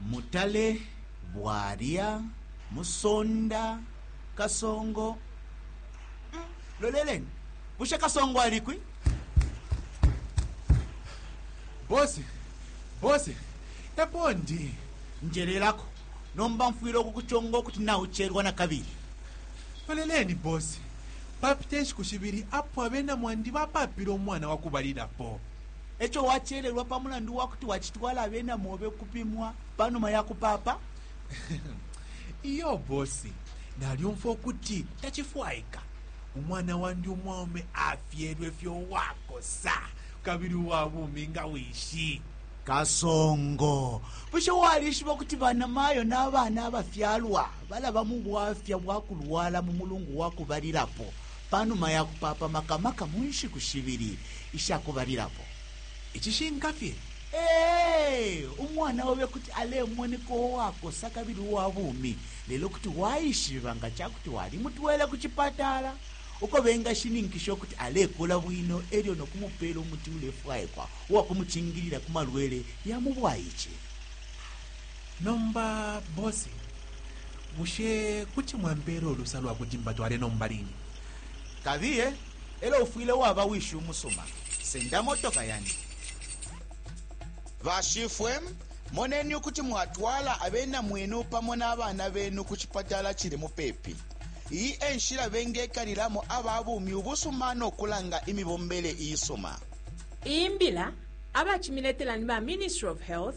Mutale, Bwalya, Musonda, Kasongo. Mm, loleleni, bushe Kasongo alikwi? Bosi, bosi, epo ndi. Njelelako, nomba mfwile ukukuchonga ukuti naucherwa na kabili. Loleleni, bosi, papite nshiku shibili apo abena mwandi bapapile umwana wakubalilapo. E co wacelelwa pa mulandu wa kuti wacitwala abena mobe ukupimwa pa numa ya kupaapa? Iyo bosi, nalyumfwa ukuti tacifwaika. Umwana wandi umwaume afyelwe fye uwakosa kabili uwa bumi nga wishi. Kasongo, bushe walishiba ukuti banamayo na bana abafyalwa balaba mu bwafya bwa kulwala mu mulungu wa kubalilapo Pa numa ya kupaapa maka maka mu nshiku shibili isha kubalilapo, icishinka fye, ee, umwana obe kuti alemoneka uwakosa kabili uwa bumi, lelo kuti waishiba nga ca kuti walimutwele ku cipatala uko bengashininkisha ukuti alekula bwino e lyo no kumupeela umuti ulefwaikwa uwa kumucingilila ku malwele ya mu bwaice. Nomba bosi, bushe kuti mwampeela ulusa lwa kuti mbatwale nomba line? Kabiye, elo ufwile waba wishi umusuma. Senda motoka yandi. Bashifwe, moneni ukuti mwatwala abena mwenu pamo na bana benu ku cipatala cili mupepi. Iyi e nshila bengekalilamo aba bumi ubusuma no kulanga imibombele isuma. Iyi mbila abacimiletela ni ba Ministry of Health,